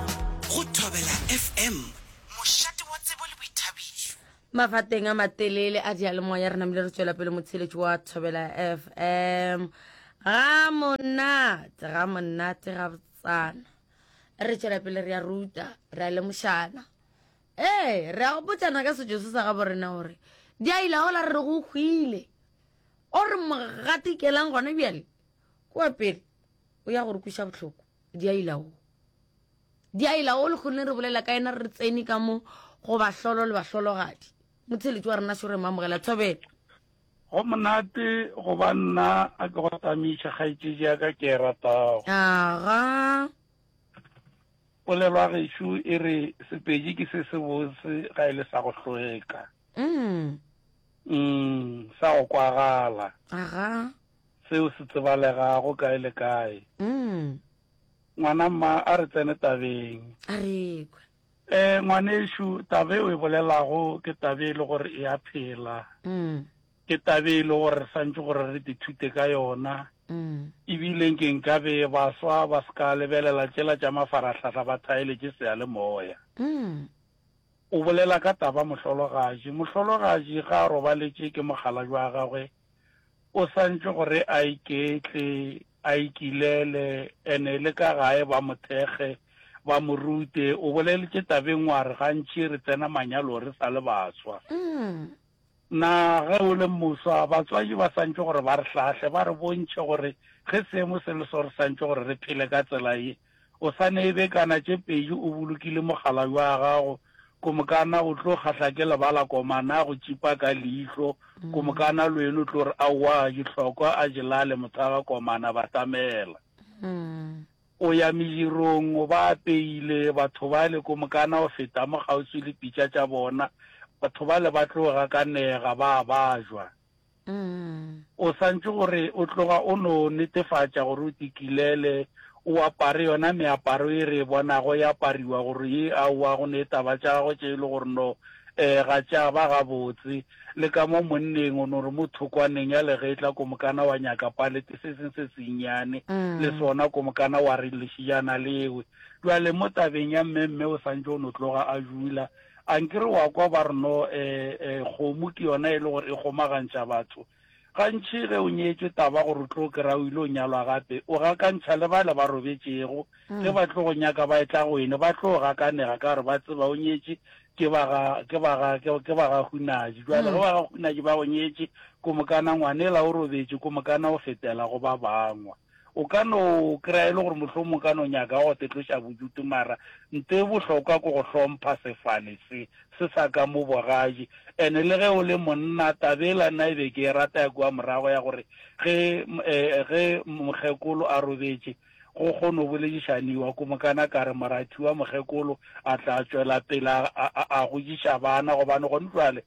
Go Thobela FM, mošate wa tsebo le boithabišo. Mafateng a matelele a diyalemoya re namile re tšwela pele motheeletši wa Thobela FM. Ga monate, ga monate ga botsana. Re tšwela pele re ya ruta, re a lemošana. Ee, re a go botšana ka setšo se sa gabo rena gore di a ila gola re re go hwile. O re mogatikelang gona bjale, kwa pele, o ya gore kwiša bohloko. diailao diailao le kgone re bolela ka ena re tsene ka mo go bahlolo le bahlologadi motheletši wa rena šore mamogela thobela go monate go ba nna a ke go tamiša kgaetšedi ya ka ke e ratago aga polelwa gešo e re sepedi ke se se bose ga e le sa go hlweka mm. mm sa go kwagala aga Seo se tsebalega go kae le kae. Ngwana mma a re tsene tabeng. A re ekwa. Ee, ngwanešu, taba e o e bolelago ke taba e le gore e a phela. Ke taba e le gore re santše gore re dithute ka yona. Ebile nke nkabe baswa ba se ka lebelela tšela tša mafarahlahla ba thaeletše seyalemoya. O bolela ka taba mohlologatši. Mohlologatši ga a robaletše ke mokgalabje wa gagwe. O santšwe gore a iketle, a ikilele, ene le ka gae ba mo thekge, ba mo rute. O boleletše tabeng wa re gantši re tsena manyalo re sa le baswa. Na ge o le moswa, batswadi ba santšwe gore ba re hlahle, ba re bontšhe gore ge seemo se le so re santšwe gore re phele ka tsela ye? O sa neebe kana tše pedi o bolokile mogala bja gago, Komokana o tlo kgahla ke lebala komana go tšipa ka leihlo, Komokana le wena o tlo re aowa dihlokwa a je lale mothaga komana batamela. O ya medirong o ba apeile, batho bale Komokana o feta mo kgauswi le pitša tša bona, batho bale ba tlo gakanega ba bajwa. O santše gore o tloga o no netefatša gore o tikilele, o apare yona meaparo ye re e bonago e apariwa gore ye aowa go ne taba tša gagwe tše e le gore no um ga tša ba gabotse. Le ka mo monneng o no re mo thokwaneng ya legetla komokana wa nyaka palete se seng se sennyane le sona komokana wa re lešijana lewe. Bjale mo tabeng ya mmemme o santše o no tloga a jula. A nke re wa kwa ba re no, ee, ee, kgomo ke yona e le gore e kgomagantšha batho. Gantši ge o nyetšwe taba gore o tlo kry-a o ile o nyalwa gape, o gakantšha le bale ba robetšego. Ge ba tlo go nyaka ba etla go ene, ba tlo gakanega ka gore ba tseba o nyetše ke ba ga, ke ba ga, ke ba ga Hunaji. Jwale ge ba ga Hunaji ba go nyetše, ko mokana ngwanela o robetše, ko mokana o fetela go ba bangwe. O ka no kry-a e le gore mohlomong o ka no nyaka go te tloša bodutu mara nto e bohlokwa ke go hlompha sefane se, se sa ka mo bogadi. And le ge o le monna, taba ela nna e be ke e rata ya kua morago ya gore ge, eh, ge mokgekolo a robetše, go kgono bolediša Niwa ko mokana ka re, Morathiwa, mokgekolo a tla tšwela pele a, a, a, a godiša bana gobane gone jwale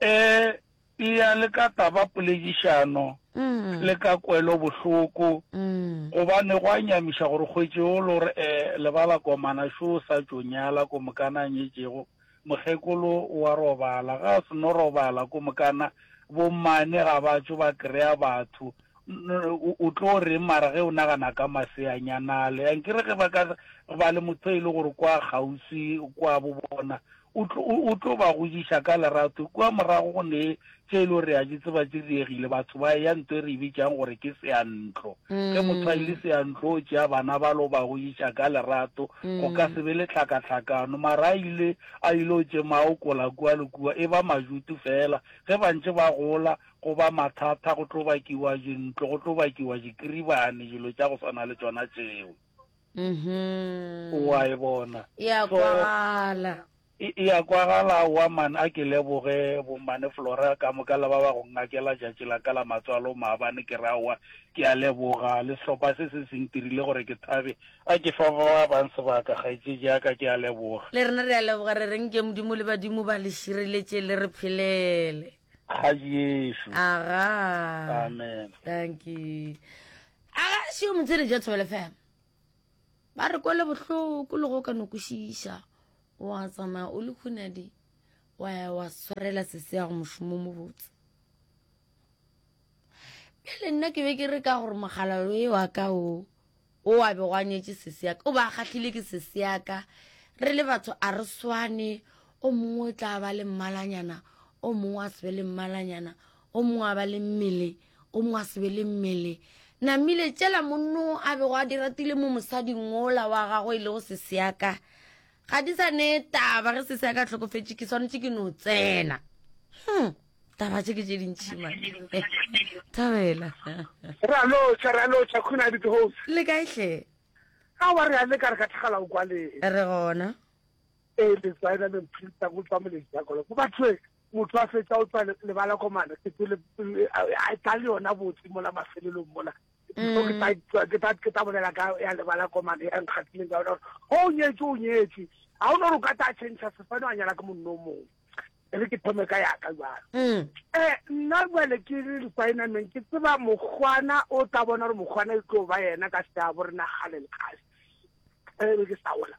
E eya le ka taba poledišano le ka kwelo bohloko gobane go a nyamiša gore kgwetše o lo re eh lebala komana šo o sa tšo nyala ko mokana a nyetšego mokgekolo o a robala ga a se no robala ko mokana bo mmane ga ba tšo ba krea batho o tlo reng mara ge o nagana ka maseanyanale ankere ge ba ka ba le motho e le gore kwa kgauswi kwa bo bona O tlo, o, o tlo ba godiša ka lerato. Kua morago go ne tše e lego re a di tseba tše diregile, batho ba eya nto e re e bitšang gore ke seantlo. Ge motho a ile seantlo o tšea bana ba lo ba godiša ka lerato, go ka se be le tlhakatlhakano. Mara a ile, a ile o tše maokola kua le kua, e ba majutu feela. Ge ba ntše ba gola, go ba mathata, go tlo bakiwa dintlo, go tlo bakiwa dikribane, dilo tša go swana le tšona tšeo. mhm. wa e bona e a kwagala e a kwagala wa man a ke leboge bomane flora ka moka le ba ba go ngakela jatši la ka la matswalo maabane ke ra wa ke a leboga le sehlopha se se seng tirile gore ke thabe a ke fa ba ba bang sebaka gaetse jaaka ke a leboga le rena re a leboga re reng ke modimo le badimo ba le šireletše le re phelele ga jesu aga amen thank you A ga se yo motsere ja Thobela FM. Ba re kwele bohloko le go ka no kwešiša. Wa tsamaya o le khunadi wa ya wa swarela sese ya go mošomo mo botse. Bjale nna ke be ke re ka gore mogalalo e wa ka o o a be go anyetše sese ya ka o ba kgahlile ke sese ya ka re le batho a re swane o mongwe o tla ba le mmalanyana o mongwe a se be le mmalanyana o mongwe a ba le mmele O mongwe a se be le mmele. Namile, tšela monno a bego a di ratile mo mosading wola wa gago e lego seseaka. Ga di sa ne taba ge seseaka tlhokofetše ke swanetše ke no tsena. Hmm. Taba tše ke tše dintšhi mane. Thabela. Ra lotšha, ra lotšha, Khune a bitse House. Le kae hle? A wa re a le ka re ka thagala o kwa le. Re gona. E le tswaena le mphilta go tswa molejagolo. Go batho Motho a fetša o tswa lebala komana ke tsele a tla le yona botse mola mafelelong mola so ke tla mm. ke tla ke tla bolela ka ya lebala komane ya nkgatileng ka ona gore o oh, nyetse o nyetse ga o ne gore o ka tla change sefane wa nyala ke monno o mongwe re ke thome ka yaka jalo um nna jale ke le requirement ke tseba mokgwana o tla bona gore mokgwana e tlo ba yena ka seabo re nagale lekgase e ke sa ola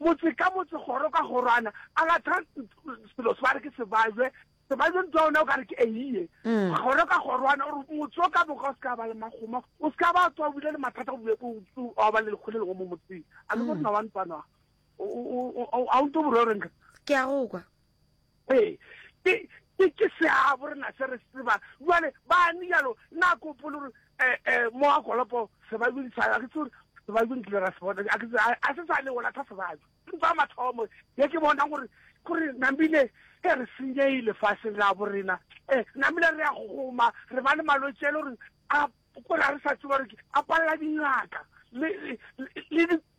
Motse ka motse, kgoro ka kgorwana, a lathang selo se ba re ke sebajwe, sebajwe ntwa ona o ka re ke eiye. Kgoro ka kgorwana, o re motse o ka moka o se ka ba le makgoma, o se ka ba tswa o bile le mathata go bjako wa ba le lekgole lengwe mo motseng. A le morena wa ntwana, a o nto boreo renka? Ke a go kwa. Ee, ke, ke, ke seabo rena se re se tseba. Jwale, bani jalo, na ke opole gore, e, e, mo a kolopo sebajong sa, a ke tse gore, sebajong kile ra se bona, a ke tse, a se sa ne o latha sebajo. Ntwa mathomo, ye ke bonang gore, gore namile e re senyehile faseng la borena. E, namile re a goma, re ba le malwetši ele gore a, gore a re sa tseba gore ke, a palela dingaka, le, le, le, le di,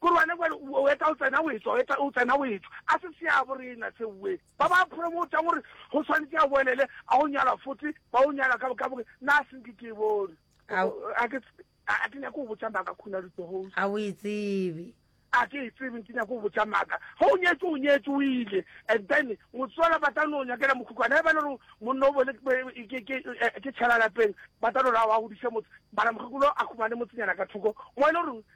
Korwane kwa le o eta o tsena o etswa, o eta o tsena o etswa. A se seabo rena se we. Ba ba promotang gore go swanetse a boelele a go nyalwa fote ba o nyalwa ka boka boke na a senke ke bone. Ao. A ke a ke nyako go botsa maka khona di host. A o e tsebe. A ke e tsebe ke nyako go botsa maka. Go o nyetse o nyetse o ile and then motswala ba tla no nyakela mokhukwana e ba le gore monna o bole ke ke ke tshela lapeng ba tla no ra wa go dise motse mara mokhukwana a khumane motsenyana ka thoko mo e le gore